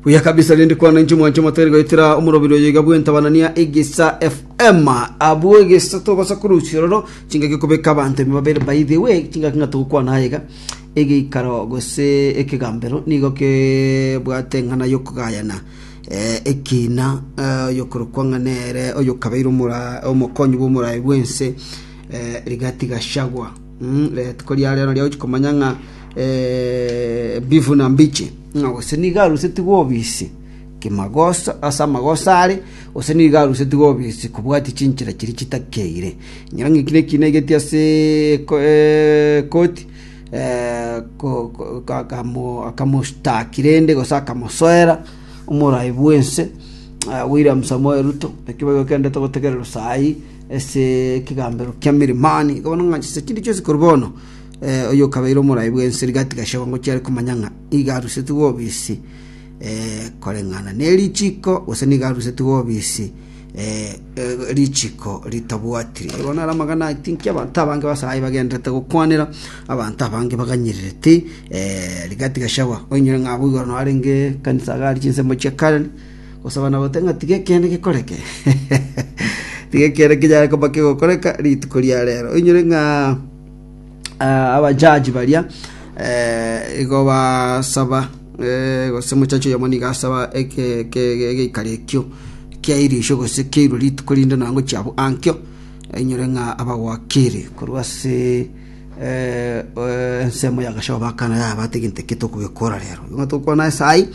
buya kabisa rindi kwana inche mwanche motari goitira omorobiri oyo iga bwentabanania egesa fm abwo egesa tobasa korusia roro chingaki kobeka abanto ime babere by the way chingaki ng'a togokwana aye iga egeikaro gose ekegambero nigo kebwate eng'ana yokogayana eh, ekina eh, oyokorokwa ng'a nere oyokabeire omora- omokonyi bw'omoraai bwense eh, rigati gashagwa Rituko ria reno ria gochia komanya ng'a mbifu na mbiche, ng'a gose nigo arusetigwe obisi kimagoso ase amagoso are, gose nigo arusetigwe obisi kobwatia chinchera chiria chitakeire. Ekiagera ng'a eki nekina egete ase eko- ekoti ko- ko- ka- kamo akamostaki rende gose akamosoera omoraai bw'ense William Samoei Ruto, ekio boigo kendete gotegererwa saii. ase ekegambero kia Mirimani. Igo bono ng'a chise chinde chionsi korwa bono eh, oyo okabeire omorai bw'ense rigati gashagwa ngo chiare komanya ng'a iga arusetigwe obisi eh, koreng'ana ne richiko gose niga arusetigwe obisi eh, eh, richiko ritabwatiri Igo bono are amagana aya tinki abanto abange basayi bagenderete gokwanera abanto abange baganyererete eh, rigati gashagwa oinyore ng'a abwo igoro naro arenge kanisa gari chinsemo chia Karen gosaba na goteba ng'a tigekeene gekoreke. Tigekeene kinyare koba kegokoreka rituko ria rero. Oinyore ng'a ah, abajaji baria eh, igo basaba eh, gose mochachi oyomo nigo asaba eke- eke- eke- egeikari ekio kia irisho gose keirwe rituko rinde nonya ngochia abwo ankio oinyore ng'a abagwakire korwa ase eh, eh, ensemo ya gashomo bakana yaba tigento eke tokogekora rero. Nigo tokwana ase ayio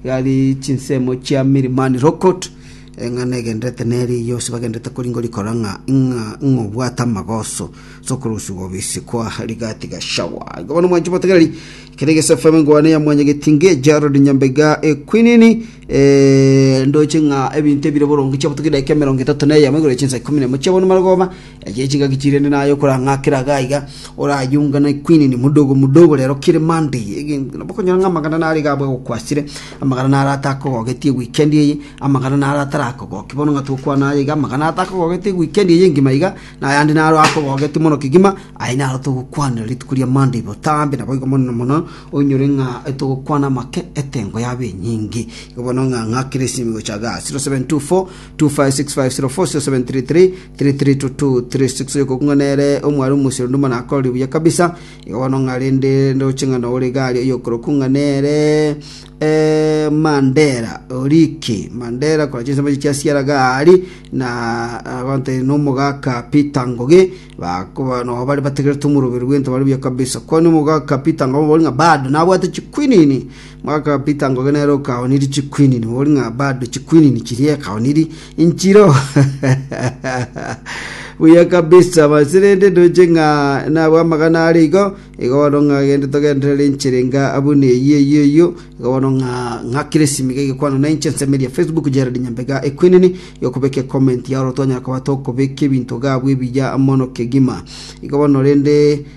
Gari chinsemo chia Mirimani Rokot, eng'ana egenderete neri yonsi bagenderete koringo rikora ng'a ing'a ing'a obwate amagoso sokoruswa gobisi kwa Rigati Gashawa. Igo bono mwanche motegereri kere gese FM ngwane ya mwanyagetinge Gerald Nyambega ekwinini eh, ndoche ng'a ebinto ebire boronge chia botugi dakika emerongo etato na eyemo igoro ya chinsa ikomi na emo chia bono marogoba Echi chingaki chirende naye okorang'akera iga iga, orayunga na equinini modogo modogo rero kere Monday. Ege bakonyora ng'a amagana nare iga abwo agokwasire, amagana nare atakogogetie weekend eye, amagana nare atarakogokia. Bono ng'a togokwana aye iga, amagana atakogogetie weekend eye engima iga, na ayande naro akogogetie mono kegima, aye naro togokwanera rituko ria Monday botambe. Naboigo mono mono oinyore ng'a togokwana make etengo yaba enyinge. Igo bono ng'a ng'akere esimi gocha iga 0724 256504 0733 3326 Oyokoku ng'a nere omware omosio naende omwana akorire buya kabisa, iga bono ng'a rende ndoche ng'a nore igari oyokoroku ng'a nere eh, Mandela Oriki Mandela korwa chinsa chimbe chia siara gari na abante nomogaka Peter Ngoge bakoba no bari bategerete omoroberi bw'ente bare buya kabisa kwani omogaka Peter Ngoge bori ng'a bado nabwate chikwinini Mwaka o bitango gena ere okaonirie chikwinini, ori ng'a bado chikwinini chiria ekaonirie inchiro. Buya kabisa, basi rende ndoche ng'a nabwo amagana are igo, igo bono ng'a gende togenderere inchera enga buna eyio eyio eyio, igo bono ng'a ng'a kiresimi iga egekwano na inche nsemeria Facebook Gerald Nyambega ekwinini, igo kobeka ecomment yago oro twanyara koba tokobeka ebinto gabwo ebiya mono kegima. Igo bono rende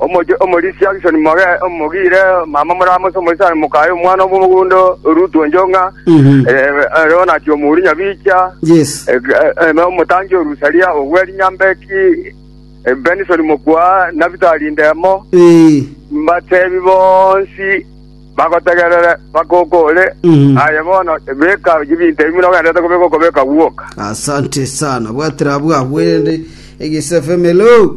Omochie omorisia Akishoni mogere omogiire mama morama ase omoisani mokaye omwana omogondo Rutu enchong'a, ere onachie omouri Nyabicha, ere omotangi o Rusaria ogwe rinyambeki, Benisoni mokwa Nabitali indemo, mbatebi bonsi bagotegerere bakoka ore. Aye bono beka chibinto ebi buna ogenderete kobeka okobeka gwoka. Asante sana bwatire abwo abwo erende egesafe melo.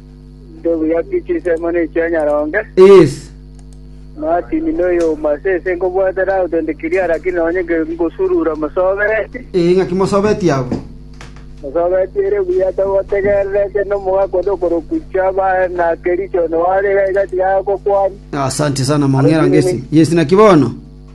Ndobu yaki chinsemo ne chia nyaronge. Yes. Martin noyo omase ese nkobwate thousand clear lakini nonye nke ngosurura mosobereti. Eh, ng'aki mosobeti abwo. Mosobeti ere buya togotegererete nomogaka onde okorokwa Chaba na Kericho no are iga tiga agokwani. Asante sana mong'era ngesi. Yes, naki bono.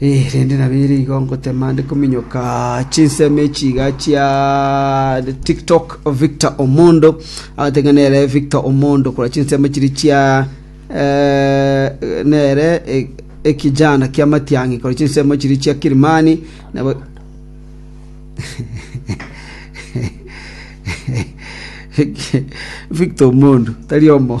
Erinde nabeire igo ngotema nde kominyoka chinsemo echi iga chia TikTok Victor Omondo. Abatenge nere Victor Omondo korwa chinsemo chiri chia eh, nere eh, ekijana kia Matiang'i korwa chinsemo chiri chia Kilimani nabo Victor Omondo tari omo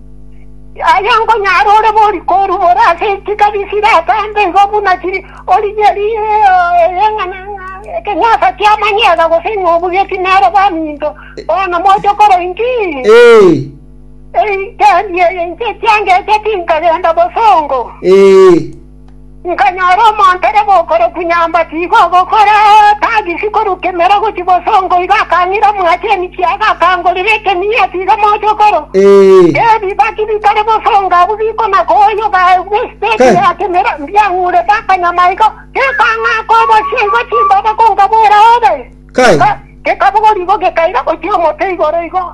Yaya nkonyare ore bori korumora ase chikari chire atambe igo buna chiri origeri eyeng'ana ng'a ekenyasa kia manyega gose ing'obu getinere baminto. Bono moche kore inki? Ee, Ee, kendi eye inche ekianga eche tinkagenda bosongo. ee. Nkanyora omonto ore bokoroku nyamba tiga ogokora, tagisi koruka emera gochia bosongo, igo akang'ira omwachenu chiaga, akangorera ekemia tiga mochokoro. Ebibaki bitare bosongo abwo bikona koyoga agwo esiteti ya kemera, mbiang'urete akanyama igo, gekang'aka obosie igo chimbaba konkaboera obe. Gekabogoria igo gekaira gochia omote igoro igo.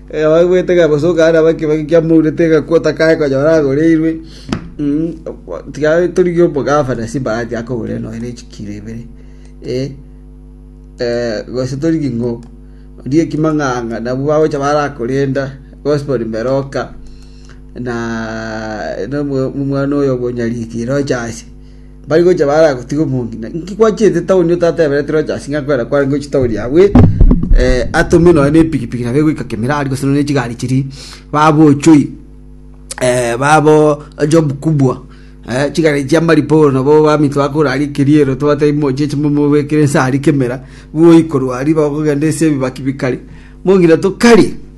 Ekebagoete kebosoka aria bakebeke kiamourete egakwa otakae konyora agoreirwe. Tiga torigie omogafana ase ebahati akogorere nonya na echikiro ibere gose torigie ng'o orie ekimang'ang'a nabwo bagocha barakorenda Gospori mbere oka na omwana oyo obonyariri roche ase. mbari gocha baragotige omonto, na inki gwachiete taoni otatebereti Rochasi ng'a kwera kware ngochie taoni yabu, eh atome nonye na epikipiki nabo egoika Kemirari gose nonye na chigari chiria, babochoi eh babo job kubwa, eh chigari chia maripa ore nabo baminto bakore aria ekeriero tobatebie mochie chimo mobekere nse aria kemera, bwoikorwa aria bakogenda ase ebibaki bikari, mong'ina tokari.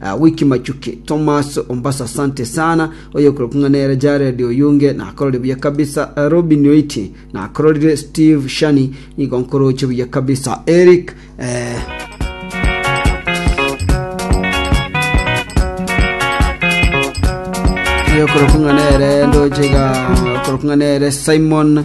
Ah, wiki machuki Thomas ombasa asante sana oyokorokwa ng'a nere Jared oyunge nakorore buya kabisa Eh, Robin oiti nakororire Steve Shani nigo nkoroche buya kabisa Eric eh, oyokorokwa ng'a nere ndochega okorokwa ng'a nere Simon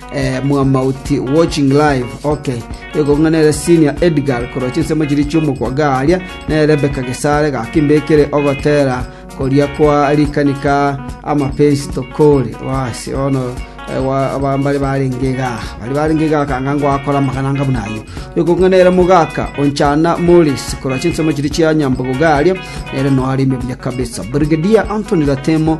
Mwamauti watching live ok. Ekong'a nere Senior Edgar korwa chinsemo chiria chi'omokwaga aaria, nere Rebecca Gesare gaki mbekire ogotera koria kwa rikanika amapensi tokore. Basi bono mbare barenge iga mbare barenge iga akanga ngoakora amagana anga buna ayio. Ekong'a nere mogaka onchana Morris korwa chinsemo chiria chia Nyambogoga aaria, nere noareme buya kabisa. Brigadier Anthony Ratemo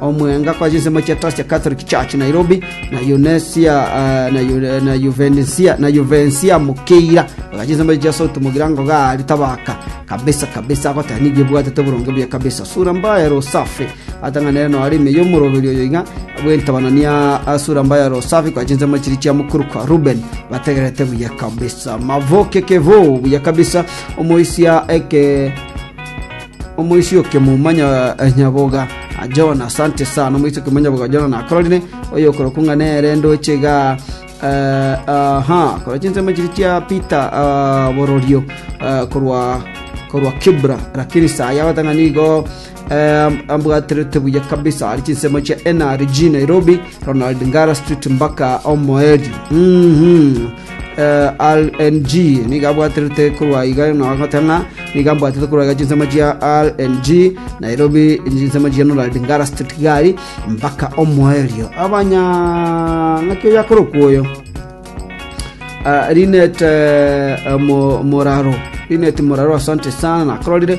omwenga kwa chinsemo chia Trust ya Catholic Church Nairobi, na Yunesia ah, na Yu- na Yuvenesia na Yuvensia Mukeira oga chinsemo chia South Mugira ngoga ari tabaka kabisa kabisa agotera nigo ebwatete oboronge buya kabisa sura mbaya rosafi atang'anere no ari ime y'omoroberi oyo iga bw'entabanania ah, sura mbaya rosafi kwa chinsemo chiri chia mukuru kwa Ruben bategerete buya kabisa mavoke kevo buya kabisa omoisia eke Omoisoki omonyaboga Jona, asante sana. Omoisoki omonyaboga Jona nakororire oyokorokwa ng'a nere ndoche iga aa. Korwa chinsemo chiria chia Peter bororio korwa korwa Kibra, lakini saa yao tang'a nigo ambwaterete buya kabisa. Ari chinsemo chia NRG Nairobi, Ronald Ngara Street mbaka Omoerio. RNG, nigo abwaterete korwa iga na goeta ng'a nigo ambwatete korwa iga chinsemo chia RNG, Nairobi, chinsemo chia Norald Ngara Street Gari, mpaka omoerio. Abanya ng'aki oyo akorokwa oyo. Ah, Linet eh, Mo- Moraro. Linet Moraro, asante sana, nakororire.